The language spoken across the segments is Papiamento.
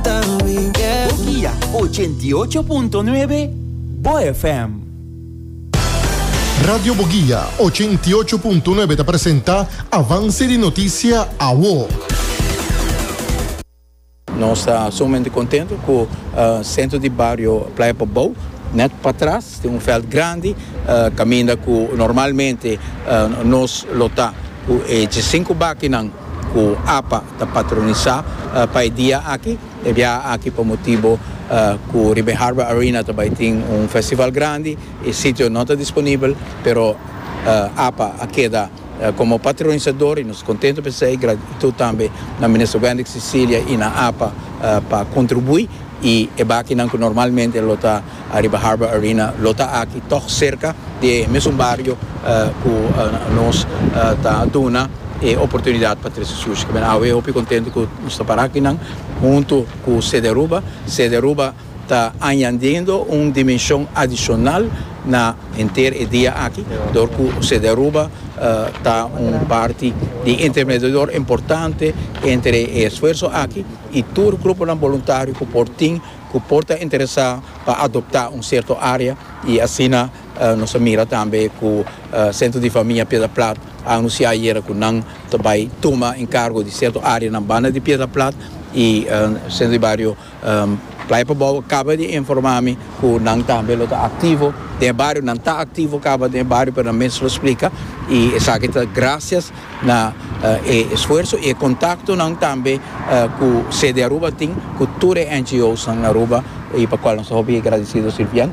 Bokia ochenta i ocho punto nuebe, bo FM. Radio Bogia ochenta i ocho punto nuebe ta presenta Avance di Noticia Awo. Nos ta sumamente contento cu centro di bario Playa Pobou net patras tin un veld grandi caminda cu normalmente nos lo ta cu e cinco bakinan. ku apa ta patronisá pa e dia aki. E biaha aki pa motibu ku riba e Harbor Arena ta bai tin un festival grandi, e sitio no ta disponibel, pero apa a keda komo patronisador i nos kontentu pa esei. Gratitud tambe na Minister Wendrick Cecilia i na apa pa kontribuí i e bakinan ku normalmente lo ta. Ariba Harbor Arena lo ta aki tòg serka di e mesun bario ku nos ta duna e oportunidat pa trese sushi. Ku men awe hopi kontentu ku nos ta para akinan huntu ku Sede Aruba. Sede Aruba ta añadiendo un dimenshon adishonal na henter e dia aki dor ku Sede Aruba ta un parti di intermediador importante entre e esfuerso aki i tur gruponan boluntario ku por tin cu por ta interesa pa adopta un cierto area y asina nos a mira tambe cu Centro di Famia Piedra Plat a anuncia ayera cu nan ta bay tuma encargo di cierto areanan banda di Piedra Plat y Centro di Bario Playa pa Bobo caba di informa mi cu nan tambe lo ta activo den e bario, nan ta activo caba den e bario pero nan mes lo splica y esaki ta gracias. Na e esfuerso y e contactonan tambe cu sede Aruba tin cu tur e NGOsnan na Aruba y pa cual nos ta hopi agradecido si bien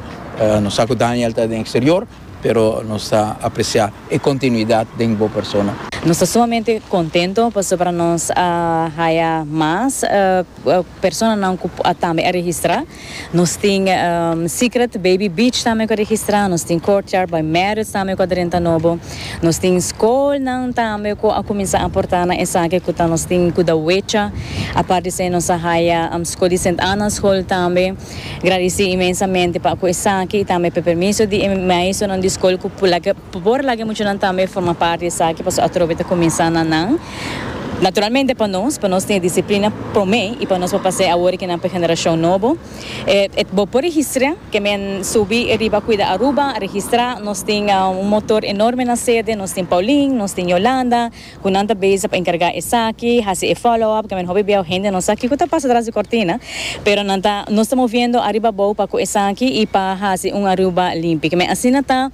nos sa cu Daniel ta den exterior pero nos ta aprecia e continuidad den bo persona. Nos ta sumamente contento pasobra nos a haya mas personanan cu tambe a registra. Nos tin Secret Baby Beach tambe ku a registrá, nos tin Courtyard by Marriott tambe ku a drenta nobo, nos tin skolnan tambe ku a kuminsá aportá na esaki ku ta nos tin ku da wecha, apart di esei nos a haya skol di Sint Anna Skol tambe. Gradisí inmensamente pa ku esaki i tambe pa e permiso di e maestronan di skol ku pulak'e. Por boor laga e muchanan tambe forma parte di esaki pasobra atrobe ta cuminsa na nan. Naturalmente pa nos, pa nos tin e disciplina prome y pa nos por pasa e awor rikinan pa e generacion nobo. E bo por registra, ke men subi riba Cuida Aruba a registra. Nos tin un motor enorme na sede, nos tin Pauline, nos tin Yolanda, cu nan ta bezig pa encarga esaki, haci e follow up, ke men hopi biahu hende no sa kico ta pasa tras di cortina, pero nan ta, nos ta moviendo ariba abao pa cu esaki y pa haci un Aruba limpi, ke men asina ta.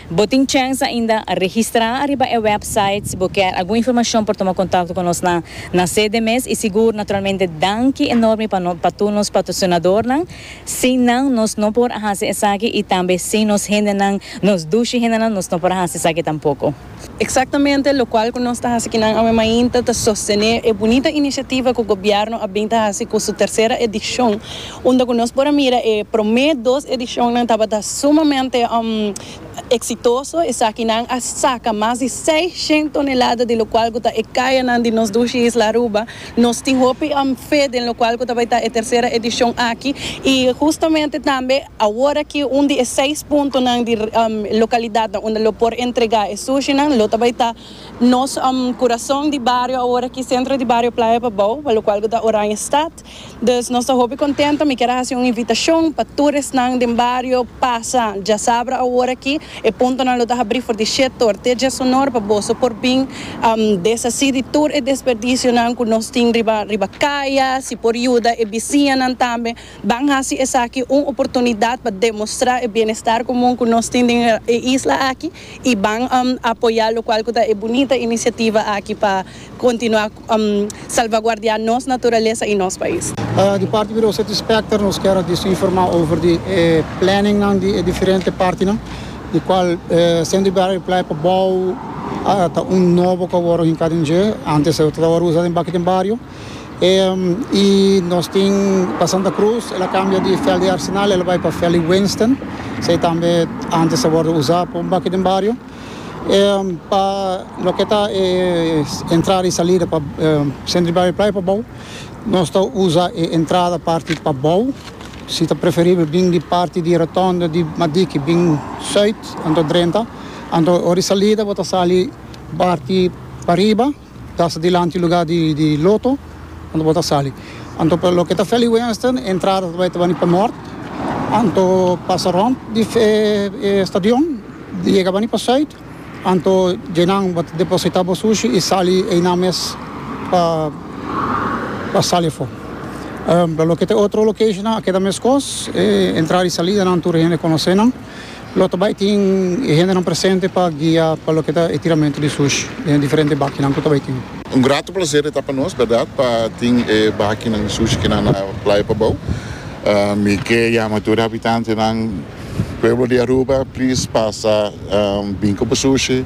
Bo tin chèns ainda registrá ariba e wèpsait si bo kèr algun informashon por tuma kontakto ku nos na na sede mes i sigur naturalmente danki enormi pa no pa tur nos patrosinadornan sin nan nos no por a hasi esaki i tambe sin nos hendenan nos dushi hendenan nos no por a hasi esaki tampoko. Exactamente locual cu nos ta haci kinan awe mainta ta sostene e bunita iniciativa cu Gobierno a bin ta haci cu su tercera edicion, unda cu nos por a mira e prome dos edicionnan tabata sumamente exitoso, esakinan a saca mas di seis shen tonelada di locual cu ta e cayanan di nos dushi isla Aruba. Nos tin hopi fe den locual cu ta bay ta e tercera edicion aki y justamente tambe aworaki un di e seis puntonan di localidadnan unda lo por entrega e sushinan lo ta bay ta nos curazon di bario aworaki centro di bario Playa Babou pa locual cu ta Oranjestad. Dus nos ta hopi contento mi kier a haci un invitacion pa tur esnan den bario pasa djasabra aworaki. E puntonan lo ta habrí for di Shetor te Djasonor pa boso por bin desasí di tur e desperdisionan ku nos tin riba riba kaya. Si por yuda e bisiñanan tambe, ban hasi esaki un oportunidat pa demostrá e bienestar komun ku nos tin den e isla aki i ban apoyá lokual ku ta e bunita inisiativa aki pa kontinuá. salvaguardia nos naturalesa i nos pais. Di parti Biro City Specter nos kier a disa informa over di e planningnan di e diferente partinan, di cual Centro di Barrio Playa pabou ta un nobo cu a wor hincá den dje, antes lo tabata usa den baki den bario, i nos tin pa Santa Cruz el a cambia di Veld di Arsenal el a bai pa Veld di Winston, esei tambe antes a wor usa pa un baki den bario. pa loke ta e entrada y salida pa centro di Barrio Playa pa bou nos ta usa e entrada parti pa bou si ta preferibel bin di parti di rotonda di Madiki bin Zuid anto Drenta anto ora di salida bo ta sali parti pa riba. Tas dilanti luga di di loto anto bo ta sali anto pa loke ta feli wenston e entrada ta bai ta bani pa nort anto pasa rond di e stadion yega bani pa suit anto djenan bo ta deposita bo sushi y sali einan mes pa pa sali afo pa loke ta otro locationnan a keda mescos e entrada y salidanan tur hende conocenan. Lo ta bai tin e hendenan presente pa guia pa loke ta e tiramento di sush den e diferente bakinan ku ta bai tin. Un grato plaser e ta pa nos, berdad, pa tin e bakinan di sush kinan na Playa Pabou. Mi ke yama tur e habitantenan, pueblo di Aruba, plis pasa bin ku bo sushi.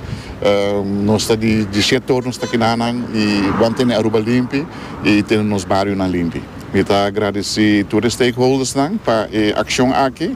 Nos ta di dishia tur nos ta kinanan i ban tene Aruba limpi i tene nos barionan limpi. Mi ta agradesí tur e stakeholdersnan pa e akshon aki.